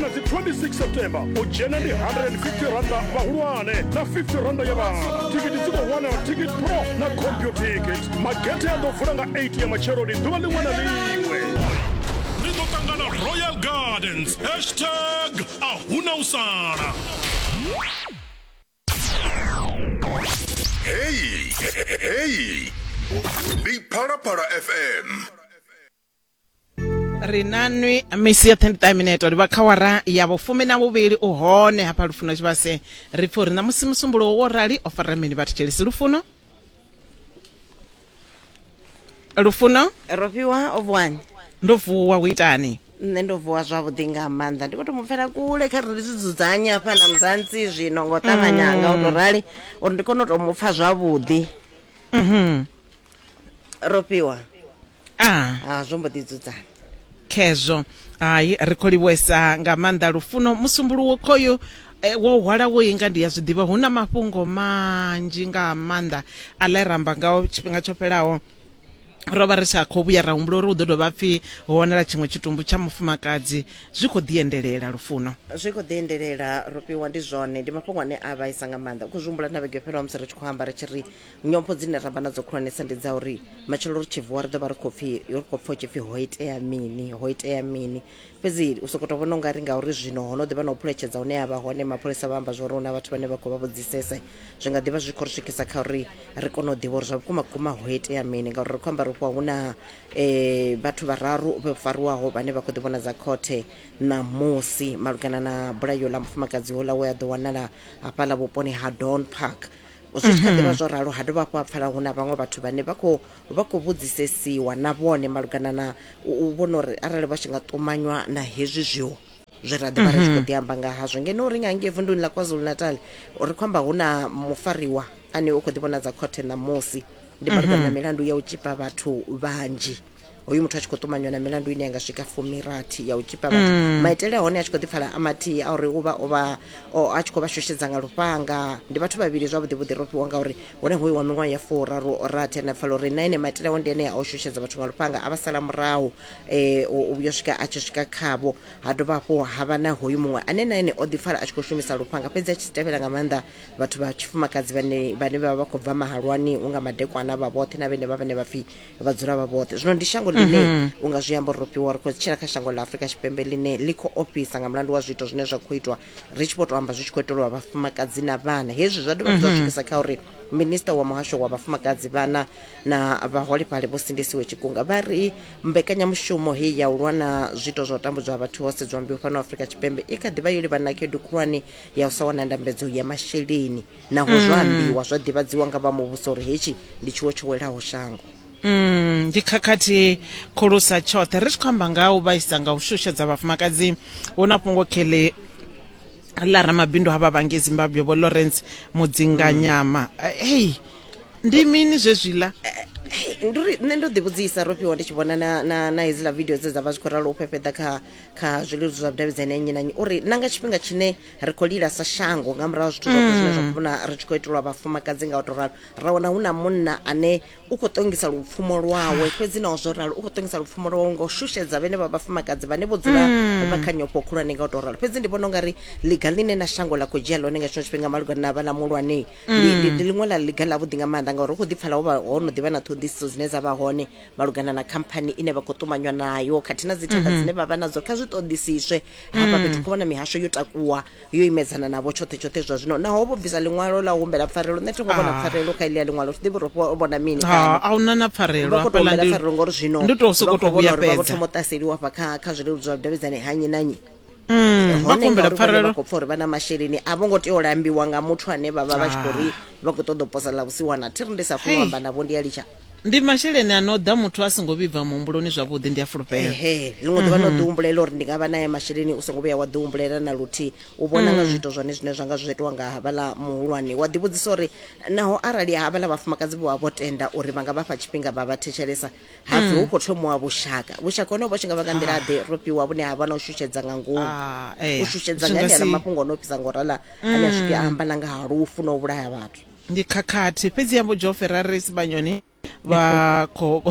na dzi 26 september u dzhena ndi 150 randa vhahulwane na 50 randa ya vhana thikiti dzi khou wanala ticket pro na computikit magethe a ḓo vula nga 8 ya matsheloni ḓuvha ḽiṅwe na ḽiṅwe ri ḓo ṱangana royal gardens hashtag a huna u sala Hey, hey, hey. Big Para Para FM. ri nanwi misi yoṱhe ndi ṱaminete uri vha kha wara ya vhufumi na vhuvhili u hone hafha lufuno tshivhase ri pfha uri na musi musumbulo wo rali o fara mini vhathu tshelisi lufuno lufuno ro fhiwa o vuwani ndo vuwa u itani nṋe ndo vuwa zwavhuḓi nga maanḓa ndi khou to mu pfela kule kha ri ndi zwi dzudzanye hafha na muzantsi zwino ngo ṱavhanya nga u to rali uri ndi kone u to mu pfha zwavhuḓi ro fhiwa ah. ah, zwo mbo ḓi dzudzana khezwo hayi ri khou livhuesa nga maanḓa lufuno musumbuluwo khoyu Eh, wo hwala wo inga ndi ya zwi ḓivha hu na mafhungo manzhi nga maanḓa a ḽa ramba ngao tshifhinga tsho fhelaho ro vha ri sa khou vhuya ra humbula uri hu ḓo dovha pfhi ho wanala tshiṅwe tshitumbu tsha mufumakadzi zwi khou ḓiendelela lufuno zwi khou ḓiendelela rofhiwa ndi zwone ndi mafhungo ane a vhaisa nga maanḓa u khou zwi humbula na vhege fhelaho musi ri tshi khou amba ri tshi ri nyompho dzine ra vha nadzo khulwanesa ndi dza uri matshelo ri tshi vuwa ri ḓo vha ri khou pfhi ri khou pfha u tshi pfhi ho itea mini ho itea mini fhedzi u sokou tou vhona ungari ngauri zwino ho no ḓi vha na u phuletshedza hune ya vha hone mapholisa vha amba zwa uri hu na vhathu vhane vha khou vha vhudzisese zwi nga ḓi vha zwi khou ri swikisa kha uri ri kone u ḓivha uri zwa vhukuma vhukuma ho itea mini ngauri ri khou amba ri fhiwa hu na um vhathu vhararu vho fariwaho vhane vha khou ḓi vhona dza khothe ṋamusi malugana na bulayo ḽa mufumakadzi houḽa we a ḓo wanala hafhaḽa vhuponi ha don park u tshi kha ḓivha zwo ralo ha dovha hafhu ha pfala hu na vhaṅwe vhathu vhane vha khou vha khou vhudzisesiwa na vhone malugana na u u vhona uri arali vha tshi nga ṱumanywa na hezwi zwiwo zwe ra ḓivha ri tshi khou ḓi amba nga hazwo ngeno ri nga ngei vunduni ḽa kwazulu natal ri khou amba hu na mufariwa ane u khou ḓi vhonadza khothe ṋamusi ndi malugana na milandu ya u tshipa vhathu vhanzhi hoyu muthu a tshi khou ṱumanywa na milandu ine ya nga swika fumirathi ya u tshipa vhathu mm. maitele a hone a tshi khou ḓipfala a mathihi a uri uvha ovha a tshi khou vha shushedza nga lufhanga ndi vhathu vhavhili zwavhuḓi vhuḓi ro fhiwa ngauri hone hoyu wa miṅwaha ya furaru rathi ane pfala uri na ene maitele ao ndi ane a u shushedza vhathu nga lufhanga a vha sala murahu um uyo swika a tshi swika khavho ha dovha hafhu ha vha na hoyu muṅwe ane na ene o ḓipfala a tshi khou shumisa lufhanga fhedzi a tshi tevhela nga maanḓa vhathu vha tshifumakadzi vhane vhane vha vha vha khou bva mahalwani unga madekwana vha vhoṱhe na vhene vha vhane vha pfhi vha dzula vha vhoṱhe zwino ndi shango ḽine mhm. u nga zwi amba uri ro fhiwa ri khou tshila kha shango ḽa afurika tshipembe ḽine ḽi khou ofhisa nga mulandu wa zwiito zwine zwa khou itwa ri tshi vho to amba zwi tshi khou iteliwa vhafumakadzi na vhana hezwi zwa dovha zwa mhm. swikisa kha uri minista wa muhasho wa vhafumakadzi vhana na vhaholefhali vho sindisiwe tshikunga vha ri mbekanyamushumo heyi ya u lwa na zwiito zwa u tambudzwa ha vhathu ho sedzwa mbeu fhano afrika tshipembe i kha ḓivha yo livhana na khaedu khulwane ya u sa wana ndambedzo ya masheleni naho zwo ambiwa zwa ḓivhadziwa nga vha muvhuso uri hetshi ndi tshiwo tsho welaho shango Mm, ndi khakhathi khulusa tshoṱhe ri tshi khou amba nga u vhaisa nga u shushedza vhafumakadzi hu na fhungo kheḽe ḽa ramabindu ha vhavhangi zimbabwe vho lawrence mudzinganyama hey ndi mini zwezwiḽa ndi uri nṋe ndo ḓivhudzisa ro fhiwa ndi tshi vhona na, na, na hedziḽa video dze dza vha zwi khou ralo u fhefheḓa kha, kha zwileludzi zwa vhudavhidzani ya nnyi na nnyi uri na nga tshifhinga tshine ri khou lila sa shango nga murahu zwithu zwoṱhe zwine zwa khou vhona ri tshi khou itelwa vhafumakadzi nga u to ralo ra wana hu na munna ane u khou ṱongisa lupfumo lwawe fhedzi naho zwo ralo u khou ṱongisa lupfumo lwawe nga u shushedza vhene vha vhafumakadzi vhane vho dzula vha kha nyofho khulwane nga u to ralo fhedzi ndi vhona ungari liga ḽine na shango ḽa khou dzhia ḽone nga tshino tshifhinga malugana na vhana muhulwane ndi ndi- ndi ḽiṅwe ḽa liga ḽavhuḓi nga maanḓa ngauri hu khou ḓipfala ho vha ho no ḓivha na ṱhoḓisiso dzine dza vha hone malugana na khamphani ine vha khou ṱumanywa nayo khathihi na dzithenga dzine vha vha nadzo kha zwi ṱoḓisiswe hafha fhethu khou vhona mihasho yo takuwa yo imedzana navho tshoṱhe tshoṱhe zwa zwino naho vho bvisa ḽiṅwalo ḽa u humbela pfarelo nṋe thi ngo vhona Ah. pfarelo kha iḽia ḽiṅwalo thi ḓivhi uri vho vhona mini Ha, kana a huna na pfarelo vha khou tou hafhaḽa humbela ndi- pfarelo ngori zwino ndi tou sokou vha khou tou vhona uri vha vho vhuyafhedza. thoma u ṱaseliwa hafha kha kha zwileludzi zwa vhudavhidzani ha nnyi na nnyi Mm, vha hone kumbela ngauri vhone pfarelo vha khou pfa uri vha na masheleni a vho ngo tea u lambiwa nga muthu ane vha vha vha tshi khou ri vha khou ṱoḓa u posa ḽa vhusiwana thi ri ndi sa funi u Hey. amba navho ndi a litsha ndi masheleni a no ḓa muthu a songo vhibva muhumbuloni zwavhuḓi ndi a fulufhela ehe ḽiṅwe ḓuvha no ḓi humbulela uri ndi nga vha naye masheleni u songo vhuya wa ḓi humbulela na luthihi u vhona nga zwiito zwone zwine zwa nga zwi itiwa nga havhaḽa muhulwane wa ḓivhudzisa uri naho arali havhaḽa vhafumakadzi vho vha vho tenda uri vha nga vha fha tshifhinga vha vha thetshelesa hapfi hu khou thomiwa vhushaka vhushaka hone vho tshi nga vha nga nḓila ḓe ro fhiwa vhune ha vha na u shushedza nga ngomu Ah, eh, u shushedza zwi nga nga enea si- mafhungo o no fhisa ngo rala ane a swike a amba na nga ha lufu na u vhulaya vhathu ndi khakhathi fhedzi yambo jo ferrari sibanyoni vha khou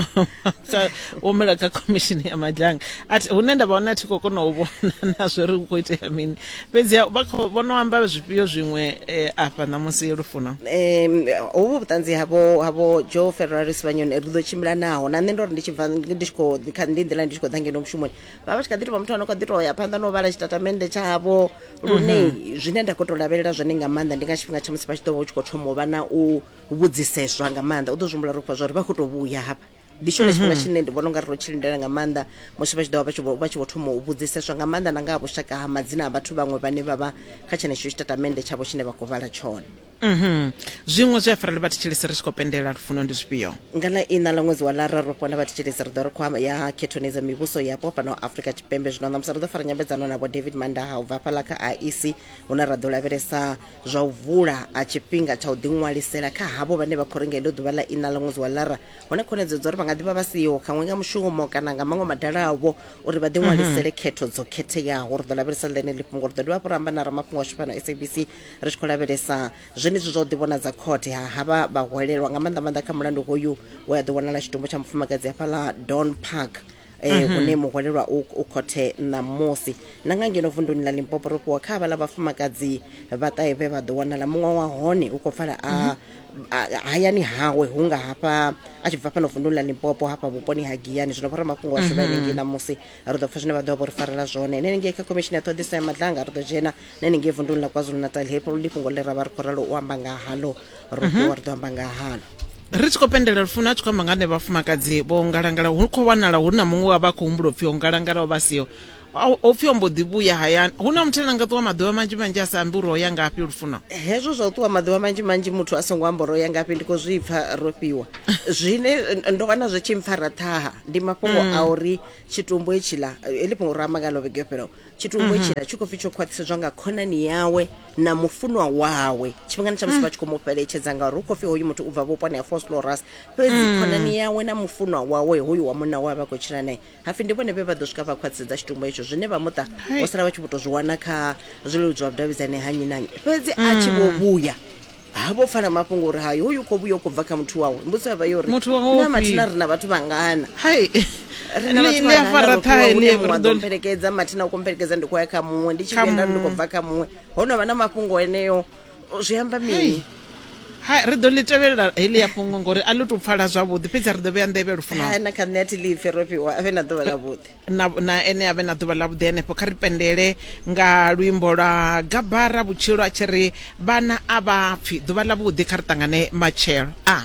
humela kha khomishini ya madzhanga athi hune nda vha hone a thi khou kona u vhona na zwori hu khou itea mini fhedziha u vha kha vho no amba zwifhio zwiṅwe eh, afha ṋamusi lufuno um hovhu vhuṱanzi havho havho joe ferraris vhanyoni ri ḓo tshimbila naho na nṋe ndo ri ndi tshi bva ndi tshi khou ḓi kha ndi nḓila ndi tshi khou ḓa ngeno mushumoni vha vha tshi kha ḓi tou vha muthu ano kha ḓi tou ya phanḓa na u vhala tshitatamennde tshavho lune zwine nda khou tou lavhelela zwone nga maanḓa ndi nga tshifhinga tsha musi vha tshi ḓo vha u tshi khou thoma u vha na u vhudziseswa nga maanḓa u ḓo zwi humbula ri khou pfa zwa uri vha khou tou vhuya hafha ndi tshone tshifhinga tshine ndi vhona ungari ro tshi lindela nga maanḓa musi vha tshi ḓovha vha tshi vho- vha tshi vho thoma u vhudziseswa nga maanḓa na nga ha vhushaka ha madzina a vhathu vhaṅwe vhane vha vha kha tshenetsho tshitatamennde tshavho tshine vha khou vhala tshone Mhm. zwiṅwe zwi a fara ḽi vha thetshelesi ri tshi khou pendela lufuno ndi zwifhio nga ḽa ina ḽa ṅwedzi wa lara ro fhona vhathetshelesi ri ḓo ri khwama ya khethoni dza mivhuso yapo fhano afrika tshipembe zwino ṋamusi ri ḓo fara nyambedzano na vho david mandaha u bva hafhaḽa kha iec hune ra ḓo lavhelesa zwa u vula a tshifhinga tsha u ḓiṅwalisela kha havho vhane vha khou renga heḽo ḓuvha ḽa ina ḽa ṅwedzi wa lara hu na khonedzeo dza uri vha nga ḓivha vha siho khaṅwe nga mushumo kana nga maṅwe madala avho uri vha ḓiṅwalisele khetho dzo khetheaho ri ḓo lavhelesa ḽeneli fhungo ri ḓo dovha hafhu ra amba na ramafhungo ashu fhano sabc ri tshi khou lavhelesa zwenezwi zwa u ḓivhonadza khothe ha havha vhahwelelwa nga maanḓa maanḓa kha mulandu hoyu we a ḓo wanala tshitumbu tsha mufumakadzi hafhaḽa don park eh, mm -hmm. une muhwalelwa u, u khothe ṋamusi na nga ngeno vunduni ḽa limpopo ro fhiwa kha havhaḽa vhafumakadzi vhaṱahe vhe vha ḓo wanala muṅwe wa hone u khou pfala a mm -hmm. hayani hawe hu nga hafha a tshi bva fhano vunduni ḽa limpopo hafha vhuponi ha giyani zwino vhora mafhungo ashu mm -hmm. vha henengei ṋamusi ri ḓo pfa zwine vha ḓo vha vho ri farela zwone ene henengei kha khomishini ya ṱhoḓiso ya madlanga ri ḓo dzhena nṋe ni ngei vunduni ḽa kwazulu natal hepo luli fhungo ḽe ra vha ri khou ralo u amba nga halo ro ṱuwa ri ḓo amba nga halo ri tshi khou pendelela lufuno a tshi khou amba nga ne vhafumakadzi vho ngalangala hu khou wanala hu na muṅwe wa vha a khou humbula upfhi o ngalangala o vha siho Au- o pfhi o mbo ḓi vhuya hayani hu na muthu ane a nga ṱuwa maḓuvha manzhi manzhi a sa ambi uri o ya ngafhi lufuno hezwo zwa u ṱuwa maḓuvha manzhi manzhi muthu a songo amba uri o ya ngafhi ndi khou zwi pfa ro fhiwa zwine eh, ndo wana zwi tshi mpfara ṱhaha ndi mafhungo a uri tshitumbu hetshiḽa eh, heḽi fhungo ro amba ngalo vhege yo fhelaho tshitumbu tshila tshi khou pfi tsho khwaṱhisedzwa nga khonani yawe na mufunwa wawe tshifhingani tsha musi vha tshi khou mu fheletshedza ngauri hu khou pfi hoyu muthu u bva vhuponi ha foslorus fhedzi khonani yawe na mufunwa wawe hoyu wa munna wawe vha khou tshila naye hapfi ndi vhone vhe vha ḓo swika vha khwaṱhisedza tshitumbu hetsho zwine vha muṱa vho sala vha tshi vho tou zwi wana kha zwileludzwa vhudavhidzani ha nnyi na nnyi fhedzi a tshi vho vhuya ha vho pfala mafhungo uri hayi hoyu khou vhuya u khou bva kha muthu wawe mbudziso ya vha yo ri Muthu wawe na ufhio? mathina ri na vhathu vhangana hai ri na Ni- vhathu ni a vhangana fara ro fhiwa ṱhahe hune ni muṅwe a ri ḓo ḓo- mpelekedza mathina u khou mpelekedza ndi khou ya kha muṅwe ndi tshi Kha vhuya nda ri ndi khou muṅwe. bva kha muṅwe ho no vha na mafhungo eneo zwi amba mini hai ri ḓo ḽi tevhelela heḽi ya fhungo ngori a ḽi tou pfala zwavhuḓi fhedzi ri ḓo vhea nḓevhe lufuno hai na kha nṋe a thi ḽipfi ro fhiwa a vhe na ḓuvha ḽavhuḓi na, na ene avhe na ḓuvha ḽavhuḓi henefho kha ri pendele nga luimbo lwa gabara vhutshilo a tshi ri vhana a vha pfi ḓuvha ḽavhuḓi kha ri ṱangane matshelo a ah.